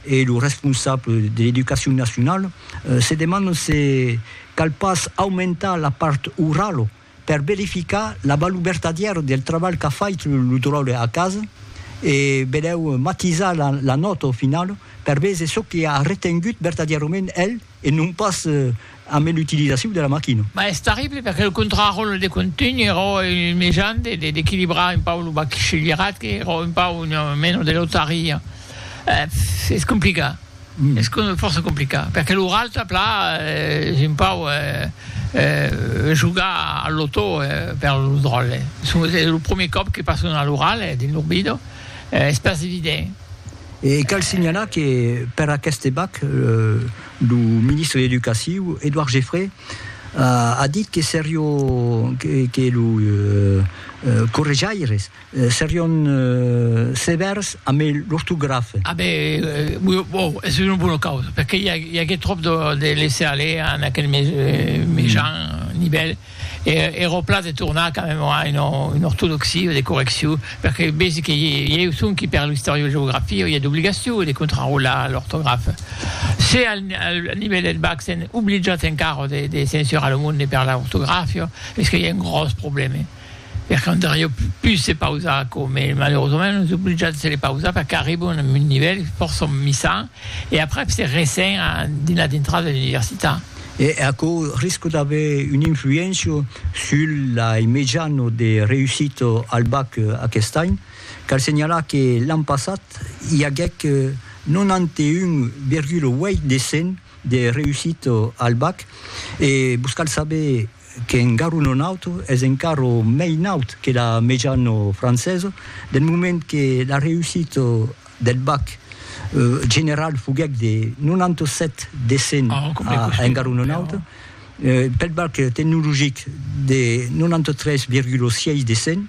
e lo responsable de l'Educacion Nacionala se demandan se cal pas aumentar la part orala per verificar la valor vertadièra del trabalh qu'a fait lo dròlle a casa e belèu matisar la nòta finala per véser çò que a retengut vertadièrament el e non pas amé l'utilisaciu de la maquina. Mas es terrible perque lo contraròle de contunh ero un mejan de d'equilibrar un pau lo bachillerat que ero un pau una mena de lotaria eh es complicat es fòrça complicat perque lo ralta pla es un pau eh jogar al lotò per lo dròlle es lo premier còp que passo una lorale dins lo bido es pas evident. E cal signalar que per aqueste bac, lo ministre de l'Educaciu, Edouard Geffray, a dit que serió, que los correjaires serión sevèrs amb l'ortografa. A ben, ò, es una bona causa, perque i agué tròp de laisser-aller en aquel mejan nivèl. Era au plan de tornar quand même a una ortodoxia de correccion, perque vesi que i eu sonqui per l'istoriogeografia i a d'obligacion de contrarolar l'ortografa. Se al nivèl del bac sèn obligiats encara de censurar lo monde per l'ortografia, es que i a un gròs problème, perque andariá pus se pausar quò, mès malerosament nos obligiats de se le pausar perque arribam a un nivèl fòrça misan e aprèp se resen dins la dintrada de l'universitat. E aquò risca d'aver una influéncia sul lai mejano de reussita al bac aquest any. Cal senhalar que l'an passat i aguèc 91,8 de 100 de reussita al bac e vos cal saber qu'en garu non auto, es encara mei naut que la mejano francesa, del moment que la reussita del bac general foguèc de 97 de 100 a en garu non auto, pel bac tecnologic de 93,6 de 100.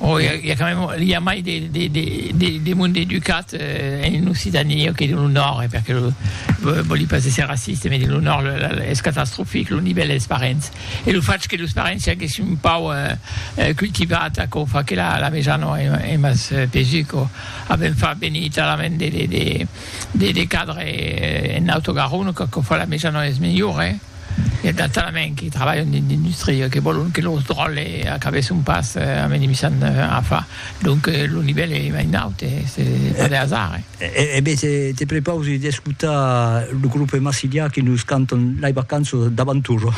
O i a quand même, i a mai de monde educat en Occitanie que dins lo Nòrd, perque vòli pas èsser raciste, mès dins lo Nòrd es catastrofic lo nivèl dels parents, e lo fach que los parents siáguessin un pauc cultivats aquò fa que la meja non es mas pesu quò avèm fach venir talament de cadres en Auto Garonne, quò fa la meja non es melhora. I a d'altres alemens que trabalhan dins l'industria que vòlon que lors dròlles acabèsson pas amenimissant afa. Donc lo nivèl es mai naut, es pas de hasard. E ben, te prepausi d'escotar lo grupe Massilia que nos cantan Lei Vacanzas d'Avantura.